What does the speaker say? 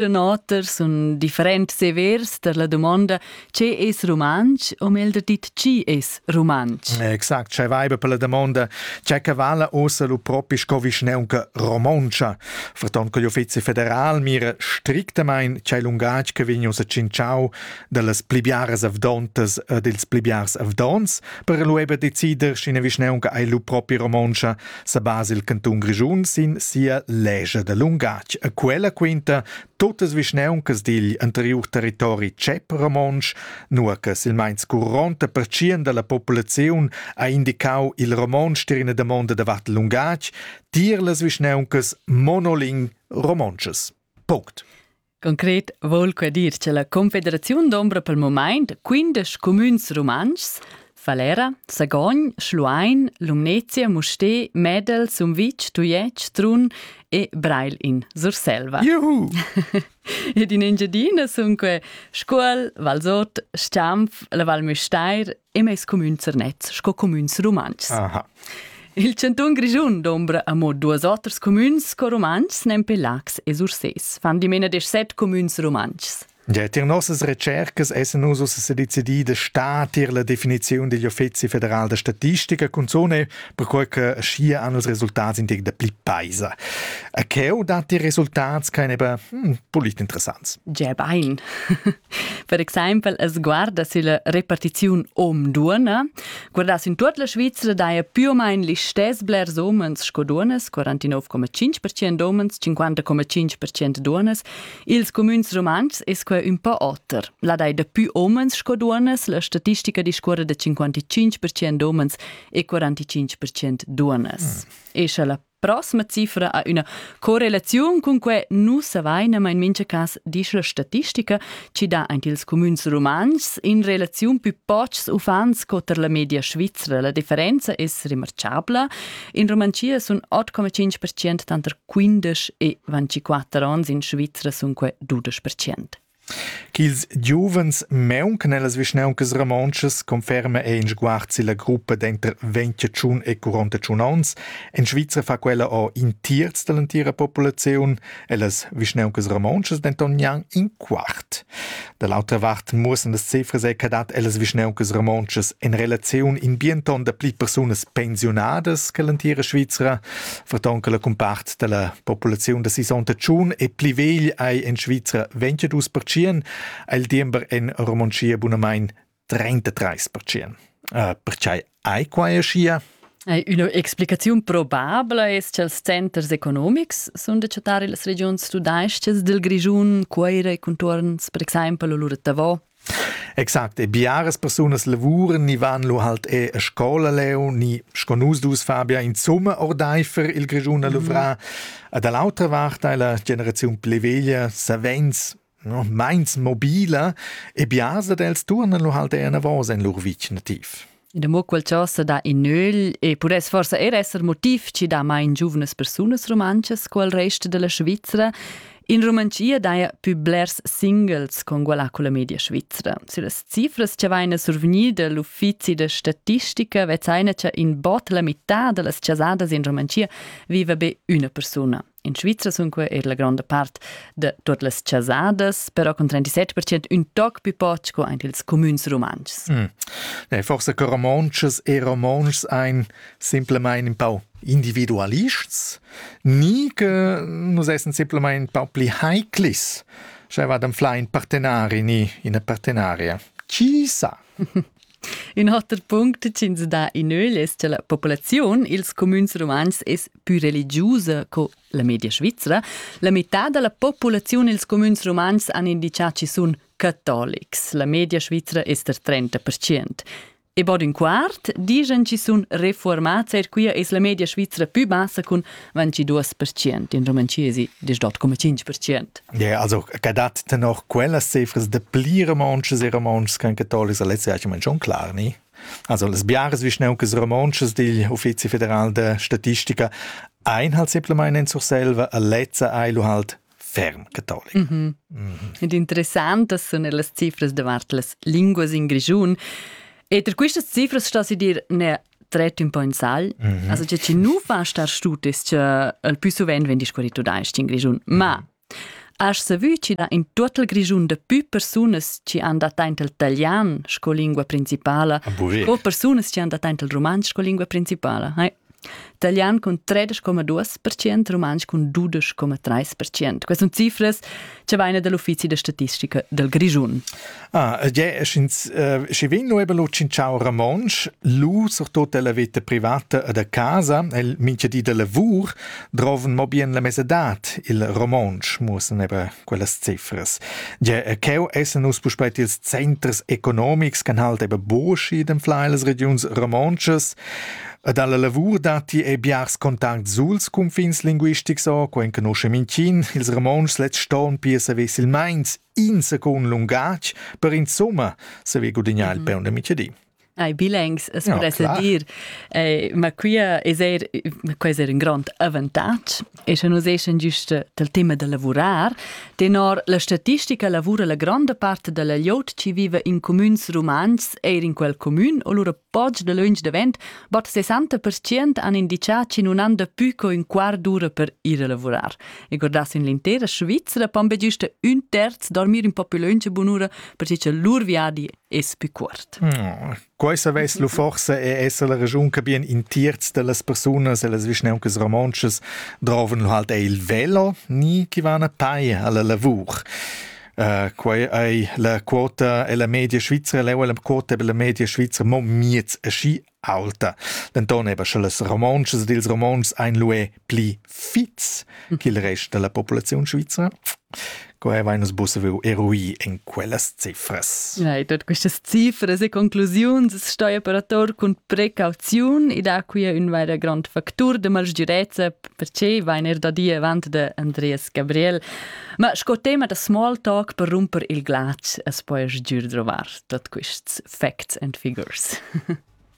In oter sun differents severs per la dumonda che es rumantsch o meglder dit chi es rumantsch. Exact, c'è vaiba per la domanda c'è che vala ossa lu propi sco vischneunca romontscha. Fraton che l'Uffizi federal mira strictamain c'è lungatg che vegn ussa cinciau dallas pli biaras avdontas e dils pli biars avdons per lu eber decider sch'ina vischneunca ei lu propi romontscha sa basa il cantun Grischun sin sia legia da lungatg e quella quinta totas vischneuncas digl anteriur territori tschep romontsch, nua che silmeins curonta pertschien dalla populaziun ha indicau il romontsch tier ina damonda davart lungatg tier las vischneuncas monoling romontschas. Punct. Concret vogl quei dir che la Confederaziun d'ombra pel moment quindesch cumüns rumantschs Falera, Sagogn, Schluein, Lumnezia, Musté, Medel, Sumvitg, Tujetsch, Trun e Breil in Surselva. Juhu! Ed in Engiadina sun que Scuol, Valsot, Stamf, la Val Müstair e mes cumün Zernez sco cumüns rumantschs. Aha. Il chantun Grischun dombra amo duos oters cumüns sco rumantschs nempe Lax e Sursés, fan dimena desch set cumüns rumantschs. Ja, tier nossas recercas essen nus ussa decidì de sta tier la definiziun degli Uffizi federal de statistica cunzone, perquei che schia han els resultats intig de pli paisa. A cheu dat die Resultats keine hm, polit interessants. Ja, bein. Per exempel es guarda sülla repartiziun hom duonna, guardà in tuot la Svizra daja più o main listess blers homens sco duonnas, 49,5% homens, 50,5% duonnas. Ils cumüns rumantschs es quai ün po oter. La dai da più homens sco duonnas, la statistica discuorra da 55% homens e 45% duonnas. Mm. E scha la Prossima cifra ha üna correlaziun cun que nu savaina ma in mincha cas disch la statistica chi dà aint ils cumüns rumantschs in relaziun pü pochs uffants co tar la media svizra. La differenza es remarchabla. In Rumanschia sun 8,5% tanter quindesch e 24 ons, in Svizra sun que dudesch percent. ch'ils giuvens mauncan ellas vischnauncas romontschas conferma ei in sguard silla gruppa denter ventiatschun e quarantatschun onns. En Svizra fa quella o in tierz dall'entira populaziun, ellas vischnauncas romontschas denton gnanc in quart. Da l'autra vart muossan las cifras che dat ellas vischnauncas romontschas en relaziun in bienton da pli persunas pensiunadas che l'entira Svizra. Vertonca la cumpart della populaziun da sisonta tschun e pli vegl ei en Svizra 22%, il diember en Romontschia bunamain 33%. Uh, perchei ei quai aschia? Üna explicaziun probabla es cha'ls centers economics sun da chattar illas regiuns tudais-chas del Grischun, Cuoira e contuorns per exaimpel o lur Tavò. Exact, e biaras persunas lavuran ni van lu halt e a scola leu, ni sco nus dus Fabia insomma ordeifer il Grischun a luvrar. A da l'autra vart ei la generaziun pli veglia savens no, meins mobila e biars dad els turnan lu halt enavos en lur vic nativ. da mo quel ciò sa dà in nöl e pudess forsa er esser motiv ci dà mai in giuvnas persunas romanchas quel rest della Svizzera In Romanchia daja pü blers singles con quella culla media svizzera. Su las cifras cha vaina survgnida l'uffizi da statistica vezzaina cha in bot la mità da las chasadas in Romanchia viva be üna persuna. In Svizra sunque eir la gronda part da tuot las chasadas, però con 37% ün toc pü poch co aint ils cumüns rumantschs. Mm. Ne, forse che romontschs e romontschs ein simplemente un po' individualists, ni che nus essen simplemente un po' pli heiklis. Cioè va dem fla in partenari ni in partenaria. Chi sa? Ün oter punct ch'ins dà in ögl es cha la populaziun i'ls cumüns rumantschs es pü religiusa co la media svizra. La metà da la populaziun i'ls cumüns rumantschs han indichà chi sun catolics. La media svizra es der 30 percient. E bod ün quart dischan chi sun refuormats, eir quia es la media svizra pü bassa cun 22% in romancesi, das dort come 5%. Ja, also gadat ten noch quellas cifras de pli romanches e romanches can catolics alesse ja schon klar, ni? Also las biaras vischnaucas romanches digl Uffizi federal de Statistica ein halt simpelmente in Surselva a lezza eilu halt ferm cattolic. Mm -hmm. mm -hmm. Ed interessant das sono las cifras davart las linguas in Grigiun. E per queste cifras sta si dir ne tret ün po in sal. Mm -hmm. Also che ci nu va star stutis che el più suvent vegn discurrit tudais-ch in Grischun, ma Has savü chi da in tuot il Grischun da pü persunas chi han dat aint il talian sco lingua principala co persunas chi han dat aint il rumantsch sco lingua principala? Hai? Italian cun 13,2%, rumantsch cun 12,3%. Queste sono cifre ce vaina dell'uffizi da statistica del Grischun. Ah, ja, sch'ins schi vegn nuebel lo cinciau Ramonsch, lu surtot della veta privata e da casa, el mincha di da lavur, droven mo bien la mesadat il Romonsch, muossen ebra quellas cifras. Ja, cheu essen us puspeit ils centers economics, can halt eben boschi dem flailes regions romonches, Ed alla lavur datti e biars contacts suls cunfins linguistics o co enconosce mincin, ils Romontschs lets ston pia saver silmeins in secund lungatg per insomma saver gudignar il peun de Michedi. Ai bilengs, es ja, podesse klar. dir, eh, ma quia es er, quai es er un grond avantatg e sche nus eschen giuste del tema da lavurar, tenor la statistica lavura la grande parte della liot ci vive in comüns romans eir in quel comün o lura Poch da lönch davent, bod 60% han indichà chi nun han dapü co ün quart d'ura per ir a lavurar. E guardass in l'intera Svizra pon be güsta ün terz dormir in po più lönch e bunura perche cha lur viadi es pü cuort. Oh, quai savess lu forse e esser la regiun che bien in terz de las personas e las vischneuncas romontschas droven lu halt il velo ni chi van a pei alla lavur. Uh, quei ei la quota e la media svizra leu la quota per la media svizra mo miez aschi alta. Denton eba sche las romontschas ed ils romontschs ein lue pli fits ch'il rest della populaziun svizra. Quei va nus busse veu erui in quellas cifras. Ja, tot questas cifras e conclusiuns stoia per ator cun precauziun e da qui un vaira grand factur de malsgirezza perché vain er da dir avant da Andreas Gabriel. Ma sco tema da small talk per rumper il glatsch as poias giür drovar tot quists facts and figures.